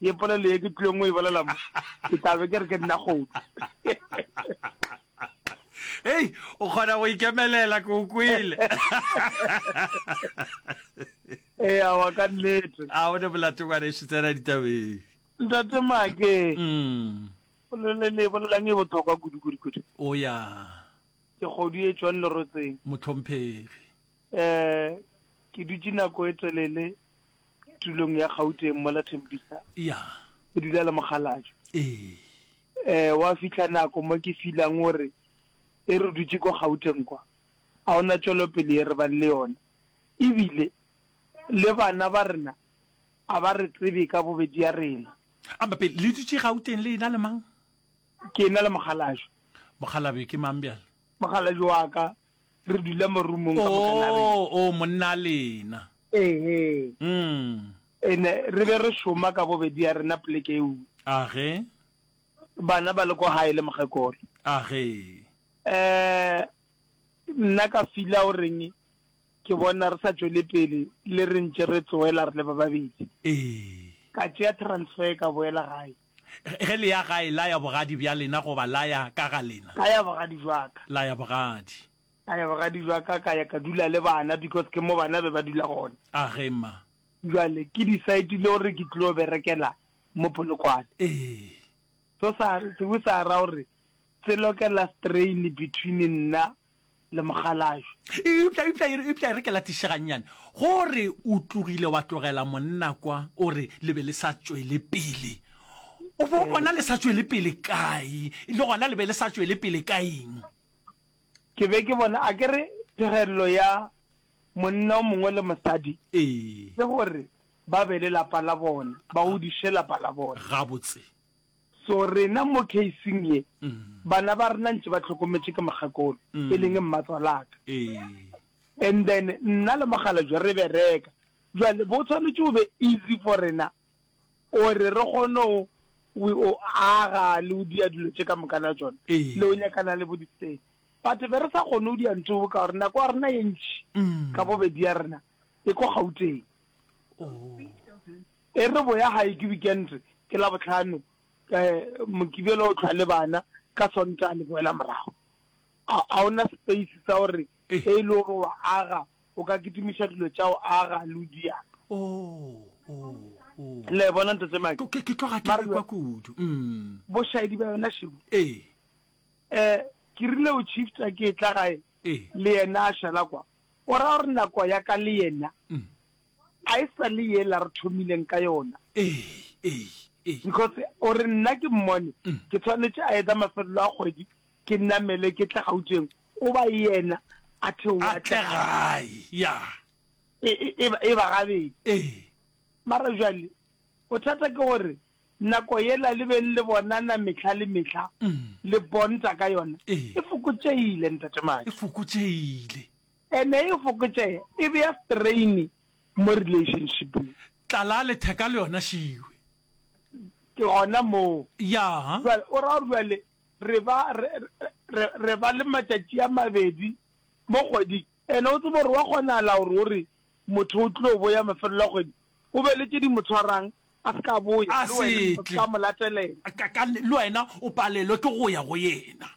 Ye polelo ye ke tlileng go e bolela mo, ke tla be ke re ke nna kgomo. Hei, o kgona go ikemelela, ke o kwele. Ee, awa ka nnete. A o ne molato ngwanešu, tsena ditabeng. Ntate Make. Mm. Polelo le e bolelang e bothokwa kudu-kudu-kudu. O ya. Ke kgodu e tšwang lerotseng. Motlhomphegi. Ee, ke dutše nako e telele tulong ya Gauteng mo la Tembisa. Ya. Ke dula le mokgalajwe. Ee. Eh, wa fihla nako mo ke filang gore e re dutše ko Gauteng kwa. A ona tšwelopele e re bang le yona. Ebile le bana ba rena a ba re tsebe ka bobedi ya rena. A mpa pele le dutše Gauteng le ena le mang? Ke ena le mokgalajwe. Mokgalabje ke mang bjale? Mokgalajwe wa ka re dula mo roomong ka moka na re o o monna lena ehe mm ene re be re shoma ka bobedi ya rena pleke e uwe age bana ba le ko hae le mogekolo age eh nna ka fila o reng ke bona re sa tswele pele le re ntse re tsoela re le ba babedi ee ka tšea transfer ka boela gae Ge le ya gae, laya bogadi bja lena goba laya ka ga lena. Laya bogadi bja ka. Laya bogadi. Laya bogadi bja ka, ka ya ka dula le bana because ke mo bana be ba dula gona. A ge mma. Bjale ke decide-ile gore ke tlilo berekela mo Polokwane. Ee. So sa, se be sa ra gore se lokela strain between nna le mokgalabje. Eupša, eupša, e re, eupša e re ke latiše gannyane. Go re o tlogile wa tlogela monna kwa, o re le be le sa tšwele pele. O bo o bona le sa tšwele pele kae, le gona le be le sa tšwele pele ka eng? Ke be ke bona, a ke re, phegelelo ya monna o mongwe le mosadi Ee. ke gore ba be le lapa la bona, ba godiše lapa la bona. Gabotse. So rena mo casing ye, bana ba rena ntše ba hlokometše ke mogakolo, e leng mmatswalaka. And then nna le Mogalajwe re bereka, jwale bo tshwanetše o be easy for rena gore re kgone go o aga le go dia dilo tše ka mokana tšona, le go nyakana le bo ditsela. But be re sa kgone go dia ntho ka gore nako ya rena ye ntši ka bobedi ya rena e ko Gauteng. E re boya gae ke wikente, ke Labohlano, Mokibelo o hlwa le bana, ka Sontaga le boela morago. Ga o na space sa gore ge e le gore o a aga, o ka kitimiša dilo tša go aga le go di apa. Le a e bona, ntatemake? Mara jwale, bošaedi bja yona šego, ke rile go tšhifta ke etla gae, le yena a šala kwa, o ra gore nako ya ka le yena, A e sa le yela re thomileng ka yona. Ee, ee, ee. Because o re nna ke mmone, ke tshwanetše a etsa mafelelo a kgwedi, ke namele ke tle Gauteng, o ba yena a theoge a tle gae. Ya. E, e, e, e ba gabedi. Ee. Mara jwale, bothata ke gore nako yela le beng le bonana mehla le mehla, le bonta ka yona, e fokotšegile, Ntate Madi. E fokotšegile. E ne e fokotšega, e bea strain mo relationshipeng. Tlala letheka le yona šiwe. Ke gona moo. Ya. Jwale o ra gore jwale re ba re re re ba le matšatši a mabedi mo kgweding ene o tsebe gore wa kgonahala gore o re motho o tlo boya mafelelo a kgwedi o be le tše di mo tshwarang a se ka boya le wena o se ka mo latelela. Ka ka le wena o palelwe ke go ya go yena.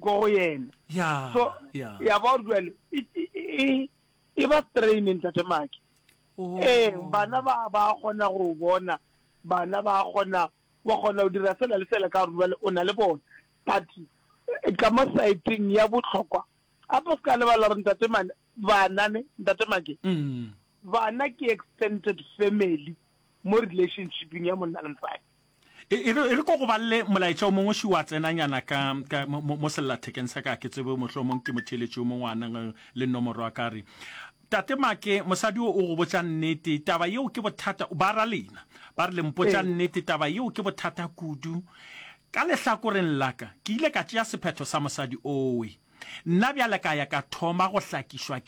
ko go yena ya so ya ya ba gore jwale e- e- e- e ba training ntate maki Oh. ee bana ba ba kgona go bona bana ba kgona wa kgona go dira sela le sela ka gore jwale o na le bona but eh, ka mo saeteng ya botlhokwa gape se ka lebala gore ntate mane Bana ne, Ntate Make, bana ke extended family mo relationshiping ya monna le mosadi. E, e re e re ko go balle molaetša o mongwe ši wa tsenanyana ka ka mo- mo mo sellathekeng sa ka ke tsebe mohlo o mong ke motheeletši o mongwe a nang le nomoro wa ka re tate make mosadi o o go botša nnete taba yeo ke bothata ba ra lena ba re le mpotša Ee. nnete taba yeo ke bothata kudu Ka lehlakoreng la ka, ke ile ka tšea sephetho sa mosadi owe. Nna bjale ka ya ka thoma go hlakišwa ke.